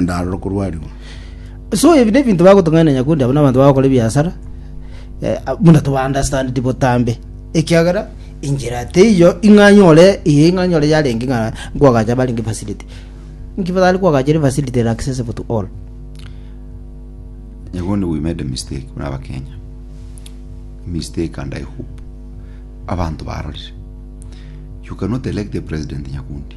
ndarora okorwarigwa. so ebi nebinto bagotong'aina nyakundi abo nabanto bagokora ebiasara eh, buna tobaunderstandidi botambe ekiagera inchera teiyo ing'anyore iye ing'anyore yarenge ng'a nkwagacha barenge facility nkibatari kwagacha ere facility ere accessible to all Nyagondi we made a mistake muna abakenya mistake and I hope abantu barorire you cannot elect a president Nyakundi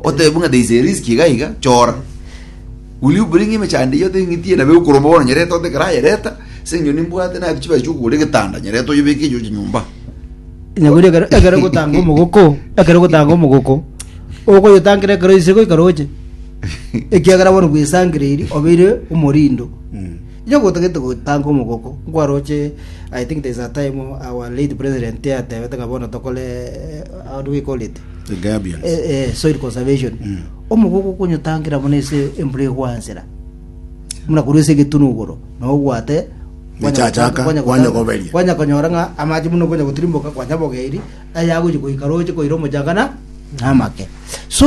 Oteba ng'a there is a risk iga iga, chora. Will you bring him chande iyio oteng'itie nabe okoromba bono nyerete tote ekero aye reta, ase eng'encho nimbwate naye chibesa chia okogora egetanda nyerete oyebeke eyochia nyomba. Onye bori ekero ekero ogotanga omogoko, ekero ogotanga omogoko, okoyotangera ekero oise goika roche, ekiagera bono bwesangeirie obeire omorindo. Onye gotagete gotanga omogooko, nkwaroche, I think there is a time our late president atebete ng'a bono tokore eh, how do we call it? The Gabions. Eh, eh, soil conservation. Mm. Omogooko okonyotangira buna ase embura egwansera. Muna korwa ase egetunu igoro, na ogwate Mechachaka, kwanya gotanga- kwanya goberia. kwanya konyora ng'a amache buna okonya gotirimboka kwanya bogeiri ayagochi goika roche koira omochanga na na amake. So